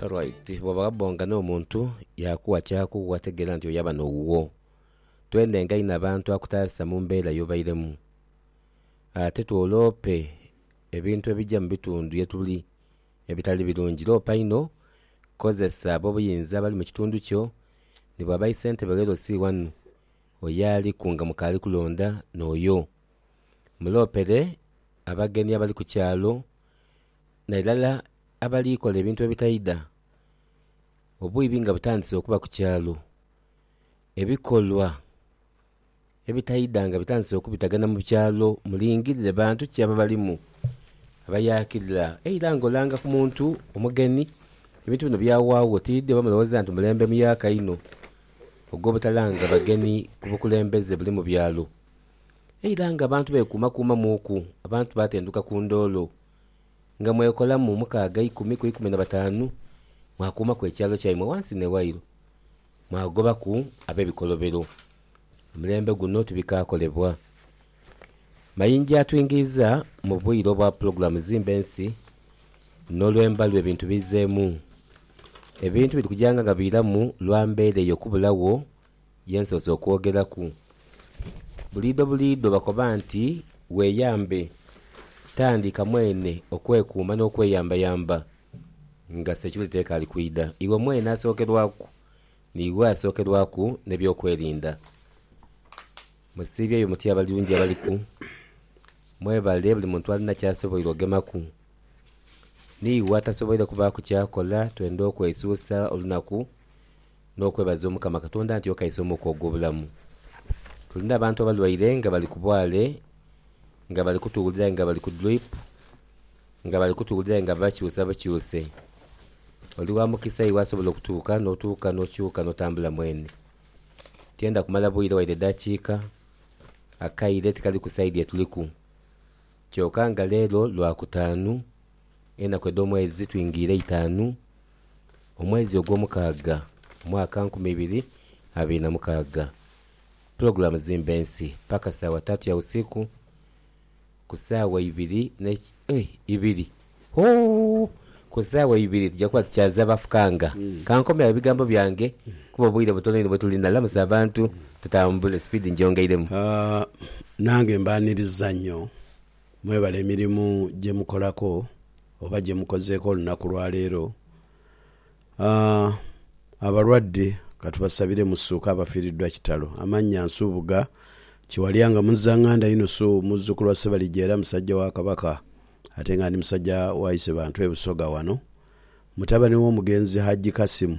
Right, bwoba ghabonga n'omuntu Yakuwa ky'akuwa tegeera nti oyo aba n'owuwo. Twenenga inho abantu akutaasa mu mbeera y'obairemu. Ate twoloope ebintu ebija mu bitundu ye tuli ebitali birungi. Loopa inho, kozesa ab'obuyinza abali mu kitundu kyo, ni bw'aba isentebe ghe LC ghanu, oyo aliku nga mukaali kulonda n'oyo. Muloopere abagenyi abali ku kyalo. Na irala abali kola ebintu ebitaidha, obwiibi nga butandise okuba ku kyalo, ebikolwa ebitaidha nga bitandise okubitagana mu kyalo, mulingirire bantu ki ababalimu abayaakirira eira nga olanga ku muntu omugeni. Ebintu bino byawaagho otiidhi oba mulowooza nti mulembe muyaaka inho ogw'obutalanga bageni ku bukulembeze buli mu byalo. Eira nga abantu beekuumakuumamuuku, abantu baatenduka ku ndoolo. nga mwekolamu mukaaga eikumi ku eikumi na bataanu, mwakuumaku ekyalo kyaimwe ghansi n'ewairo, mwagobaku ab'ebikolobero. Omulembe guno tibikaakolebwa. Mayinja atwingeiza mu bwire obwa pulogulaamu zimba ensi, n'olwemba lwe bintu biizeemu. Ebintu biri kujanga nga biiramu lwa mbeera eyo kubulagho Ye nsoose okwogeraku. Buliidho buliidho bakoba nti weeyambe. Tandika mwene okwekuuma n'okweyambayamba nga Secureeta ekaali kwidha. Iwe mwene asookerwaku, niiwe asookerwaku n'ebyokwerinda. Musiibyeyo mutya abali lungi abaliku? Mwebale buli muntu alina ky'asoboire ogemaku. N'iwe atasoboire kubaaku ky'akola twenda okwesuusa olunaku n'okwebaza Omukama Katonda nti okaisa omwuka ogw'obulamu. Tuli n'abantu abalwaire nga bali ku bwale, nga bali kutuwulira aye nga bali ku drip, nga bali kutuwulira aye nga babakyusa bukyuse. Oli wa mukisa iwe asobola okutuuka n'otuuka n'okyuka n'otambula mwene. Tienda kumala bwire waire edhakiika, akaire tikali ku saidi etuliku. Kyoka nga leero Lwakutaanu, Enaku edh'omwezi twingiire itaanu, omwezi ogw'omukaaga, mwaka nkumi ibiri abiri na mukaaga. Pulogulaamu zimba ensi paka saawa tatu ya usiku ku saawa ibiri ne eh ibiri ooh ku saawa ibiri dhija kuba dhikyaza bafukanga. Kankomye agho ebigambo byange kuba obwire butono inho bwetuli. Nalamusa abantu tutambule, sipiidi ngyongeiremu. Nange mbaaniriza nnyo Mwebale emirimu gye mukolaku oba gye mukozeeku olunaku lwa leero. Abalwadde ka tubasabire musuuke abafiiriddwa kitalo. Amannya, Nsubuga Kiwalya nga Muzzanganda Yunusu muzzukulu wa Ssebalijja era musajja wa Kabaka ate nga ndi musajja wa Isebantu e Busoga wano. Mutabani w'omugenzi Hajji Kasim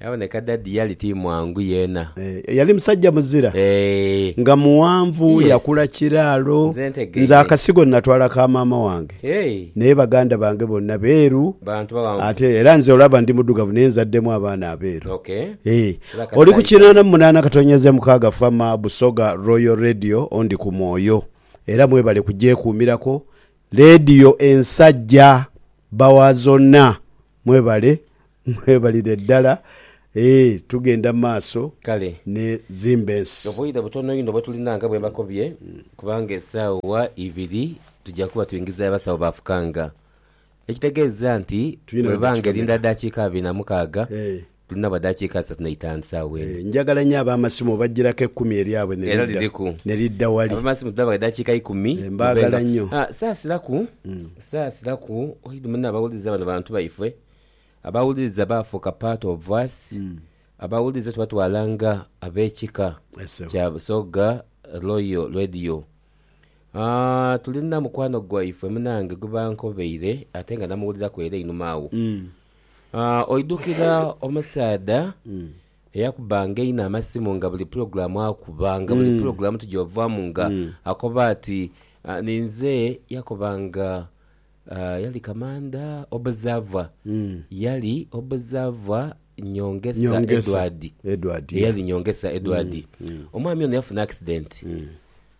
Yaboneka Daddy yali ti mwangu yeena. Eeh yali musajja muzira Eeh nga mughanvu yes yakula kiraalo nze Nze ntegeire akasigo natwala ka maama wange Eeh naye baganda bange bonna beeru bantu baghanvu ate era nze olaba ndi mudhugavu naye nzaddemu abaana abeeru Ok Eeh era kati oli ku saayitamu. kinaana mu munaana katonnyeze e mukaaga Fama Busoga Royal Radio ondi ku mwoyo era mwebale kugyekuumirako leediyo ensajja bba wa zonna Mwebale, mwebalire ddala. Eeh, tugenda mu maaso Kale. ne zimba ensi. Obwire butono inho bwetulina nga bwembakobye kubanga esaawa ibiri tuja kuba tuingizayo abasawo ba fukanga. Ekitegeeza nti Tulina bweba nga erinda weditukomera. dakiika abiri na mukaaga Eeh. Tulina bwa daakiika asatu na itaanu saagho eno. Ee, njagala nyo ab'amasimu obajjiraku ekumi eryabwe ne Era lidda, liriku. ne lidda wali. Ab'amasimu tulina bwa daakiika ikumi. Ee, mube nga. mbaagala nyo. Ha, saasilaku, saasilaku. Oidhi munno abawuliriza bano bantu baifwe. Abawuliriza baafuuka part of us. Abawuliriza tubatwala nga ab'ekika Yes, ssebo. kya Busoga Royal Radio. Aa, tulina mukwano gwaifwe munange gwe bankobeire ate nga namuwuliraku ere einhuma agho. Oidhukira omusaadha eyakubbanga einho amasimu nga buli pulogulaamu akuba, nga buli pulogulaamu tugyovaamu nga akoba ati, ninze yakobanga yali kamandha Obuzava, yali Obuzava Nyongesa Edward, eyali Nyongesa Edward. Omwami ono yafuna akisidenti.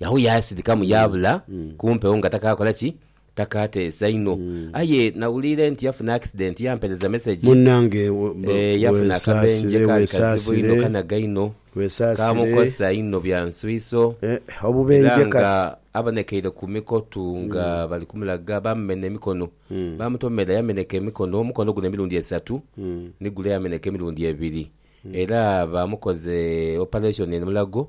Agho yaasidhikamu yaabula ku mpewo nga takaakola ki? Takaateesa inho. Aye nawuliire nti yafuna akisidenti yampereza mesegi. Munnange yafuna akabenje kaali kazibu inho kanaga inho, kaamukosa inho bya nswiiso era nga abonekeire ku mikotu nga bali kumulaga. Baamumenha emikono, baamutomera yamenheka emikono, omukono guno emirundi esatu ni gule yamenheka emirundi ebiri era baamukoze opaleshoni eno mulago.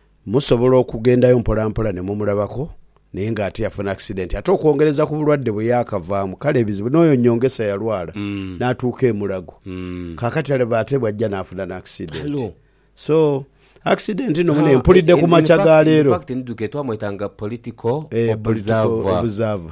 Musobola okugendayo mpolampola ne mumulabako naye nga ate yafuna akisidenti ate okwongereza ku bulwadde bwe yaakavaamu kale ebizibu. N'oyo Nyongesa yalwala n'atuuka e Mulago kaakati alaba ate bw'ajja n'afuna n'akisidenti. So akisidenti nno mune mpulidde ku makya ga leero. Eeh political observer.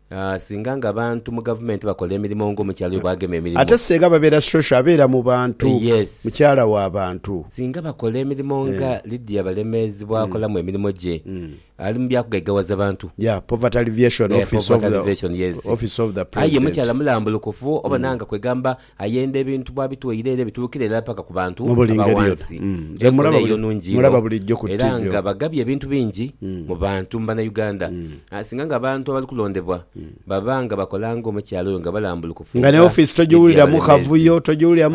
Singa nga abantu mu gavumenti bakola emirimo nga omukyala oyo bwagema emirimo. Ate senga babera social abera mu bantu. Yes. Mukyala wa bantu. Singa bakola emirimo nga Lydia Balemeezi bwakolamu emirimo gye. Ali mu bya kugaigawaza bantu. Yeah, poverty alleviation office of the office of the president. Aye mukyala mulambulukufu obona nga kwegamba Ayenda ebintu bw'abitwaire ere bituukira irala paka ku bantu aba wansi. Enkola eyo nungi inho era nga bagabye ebintu bingi mu bantu mu Banauganda. Singa nga abantu abali kulondebwa baba nga bakola nga omukyala oyo nga balambulukufu nga dhiri abeemeezi,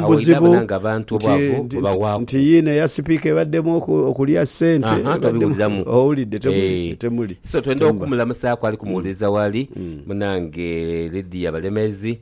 agho ira bona nga abantu obwavu bubawaaku. Haa tobiwuliramu eeh. So twendha okumulamuzaaku ali kumuwuliriza waali, munange Lydia Balemeezi.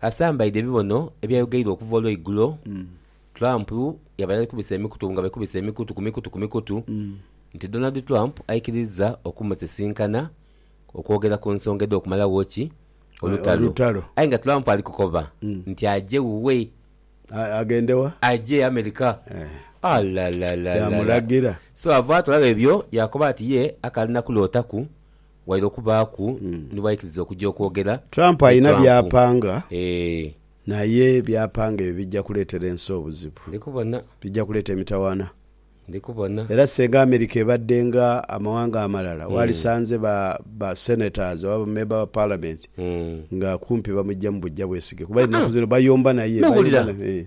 Asambaidhe ebibono ebyayogeirwa okuva olweigulo, Trump yabala ali kubisa emikutu nga bekubisa emikutu ku mikutu ku mikutu nti Donald Trump aikiriza okumusisinkana okwogera ku nsonga edh'okumalawo ki olutalo aye nga Trump ali kukoba nti aje wuwe, aje America alalalalala so avaato agho ebyo yaakoba ati ye akali na kulootaku Waire okubaaku ni bwaikiriza okuja okwogera Trump ni alina Trump. byapanga Eeh. naye byapanga ebyo bijja kuleetera ensi obuzibu. Ndi kubona. Bijja kuleeta emitawaana. Ndi kubona. Era singa America ebadde nga amawanga amalala walisanze ba ba senators oba ba member ba parliament nga kumpi bamujjamu bujja bwesige kuba ennaku zino bayomba naye, bayomba Nowulira naye.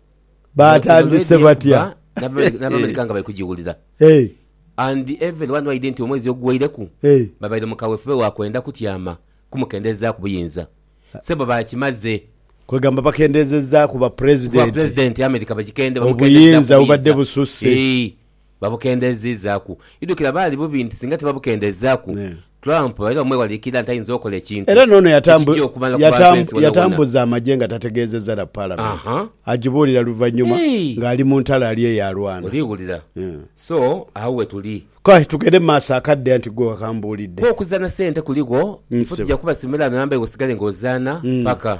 Baatandise batya? N'Abamerika nga bali kugiwulira and every one wide nti omwezi oguweireku babaire mu kawefube wa kwenda kutyama kumukendeezaaku buyinza. Sebo baakimaze. Kwegamba bakendeezezaaku bwa Pulezidenti obuyinza obubadde bususse. Babukendeezizaaku. Idhukira baali bubi nti singa tibabukendeezaaku, Trump baira bamwewaliikirira nti aidhinza okola ekintu Era n'ono ekigya okumala ku bantu ensi boonaboona. yatambuza amagye nga tategeezezza na Palamenti, Aha. agibuulira luvannyuma Hey! ng'ali mu ntalo ali eyo alwana. Oliwulira? So, agho we tuli. Kale tugende mu maaso akadde anti ggwe wakambuulidde. Kwo okuzaana ssente kuligho, ife Ssebo. tujja kubasimira namba iwe osigale ng'ozaana paka.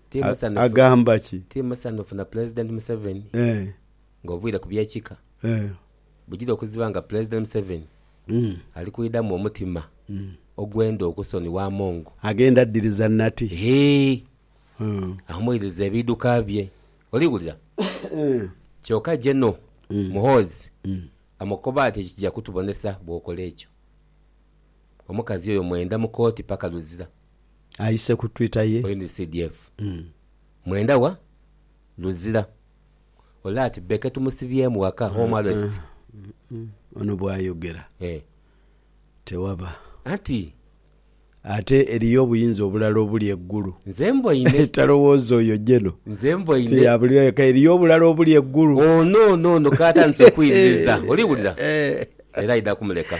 agamba ki? Tiri musanhufu na Pulezidenti Museveni ng'oviire ku by'ekika. Bujire okuziba nga Pulezidenti Museveni ali kwidhamu omutima ogwenda okusonigha Among. Agenda adiriza nati? Eeh, ahumuiririza ebiidhuka bye. Oli wulira? Kyoka Geno. Muhoozi amukoba ati ekyo kija kutubonesa bw'okola ekyo. Omukazi oyo mwenda mu kooti paka luzira. aise ku twitter ye. NCDF mwenda wa luzira ole ati Becky tumusibyemu waka home arrest. Ono bwayogera tewaba. Anti. Ate eriyo obuyinza obulala obuli e Gulu. Nze mboine. Talowooza oyo Geno. Nze mboine. Nti yabulira yeka eriyo obulala obuli e Gulu. Ono ono ono katandise okwiririza oliwulira era aidha kumuleka.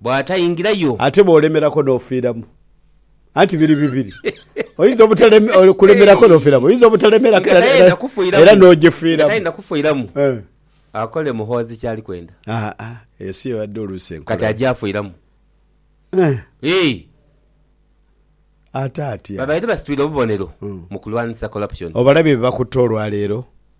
bw'ataingira yo. Ate bw'olemerako n'ofiiramu, anti biri bibiri, oyinza obutaleme-okulemerako n'ofiiramu, oyinza obutalemerako era, era, era n'ogifiiramu. Nga tayenda kufiiramu, akole Muhoozi ky'ali kwenda. Aa, ensi ebadde oluusi enkulamu. Kati aja afiiramu. Eeh! Ate atya? Babaire basitwire obubonero mu kulwanisa corruption. Obalabye bye bakutte olwaleero?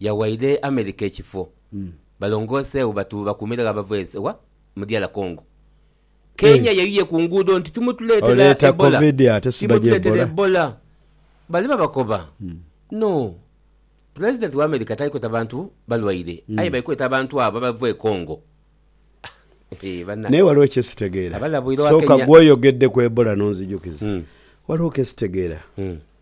yawaire America ekifo balongooseegho batu bakuumiragho abava ensi wa mu DR Congo. Kenya yayuye ku nguudo nti timutuleetera Ebola, timutuleetera Ebola. Bali babakoba no Pulezidenti wa America tali kweta bantu balwaire aye bali kweta abantu abo abava e Congo. Naye waliwo kye sitegeera. Sooka ggwe oyogedde ku Ebola n'onzijukiza. Waliwo ke sitegeera.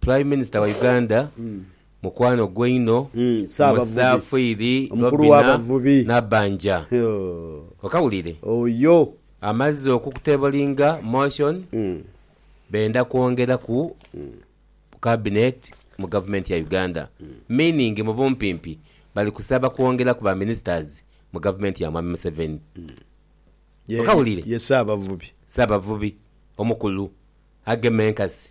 Prime Minister wa Uganda, mukwano gwe inho, Musaafiri Robina Nabbanja, okawulire, amazze okukutebolinga motion benda kwongera ku Cabinet mu Gavumenti ya Uganda. Meaning mu bumpimpi bali kusaba kwongera ku ba Ministers mu Gavumenti ya Mwami Museveni. Okawulire, Ssaabavubi omukulu agema enkasi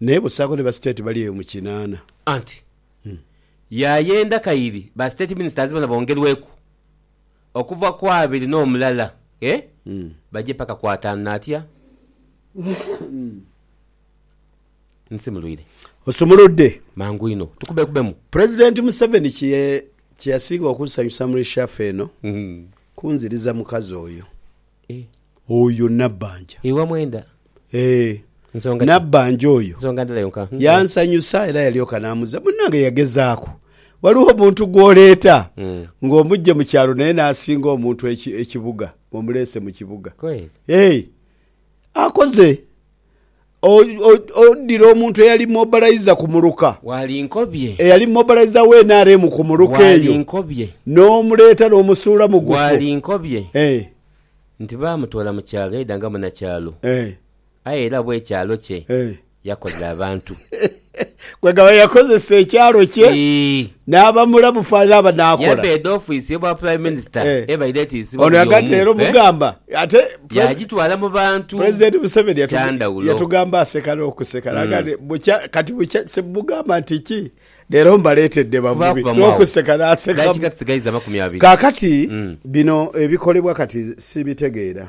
Naye busaako ni ba state bali eyo mu kinaana. Anti yaayenda kairi ba state ministers bona bongerweku okuva ku abiri n'omulala ee baje paka ku ataanu natya nsimulwire. Osumuludde. Mangu inho tukubekubemu. President Museveni kye kye yasinga okunsanyusa mu reshuffle eno kunziriza mukazi oyo. Eh. Oyo Nabbanja. Iwe mwenda. Eh. Nsonga ki? Nabbanja oyo. Nsonga ndala yonka. Hum. Yansanyusa era yalyoka n'amuzza. Munnange yagezaaku. Waliwo omuntu gw'oleeta ng'omuggye mu kyalo naye n'asinga omuntu ekibuga, omuleese mu kibuga. Kweli? Eh. Akoze. Odire omuntu eyali mobalaiza ku muluka eyali mobalaiza wa nrm ku muluka eyo n'omuleeta n'omusuula mu gufo ee. Nti baamutoola mu kyalo aidha nga munakyalo, aye era bw'ekyalo kye yakolera abantu. Kwegaba yakozesa ekyalo kye naaba mulamu fala naaba nakola. Yabeeda ofiisi y'obwa Prime Minister ebaire etiisibwa buli omu, yaagitwala mu bantu. President Museveni yatugamba aseka n'okuseka n'agamba nti, Bukya kati bukya simugamba nti ki? Leero mbaleetedde bavubi. N'okuseka n'asekamu. Kaakati bino ebikolebwa kati sibitegeera.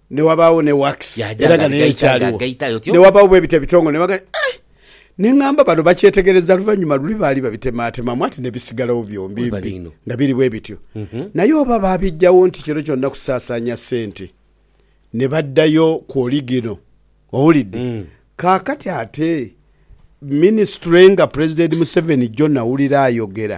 Ne wabaagho ne wax, Yaaja era nga naye ng'aligaita, ekyaliwo. ng'agaita aye otyo. Ne wabaawo bwe biti ebitongole, ne bagamba, Ai! Ne ngamba bano bakyetegereza luvannyuma luli baali babitemaatemamu ati ne bisigalawo byombi Webale mbi inho. nga biri bwe bityo. Naye oba baabiggyawo nti kiro kyonna kusaasaanya ssente ne baddayo ku oligino? Owulidde? Kaakati ate minisitule nga Pulezidenti Museveni jjo nawulira ayogera.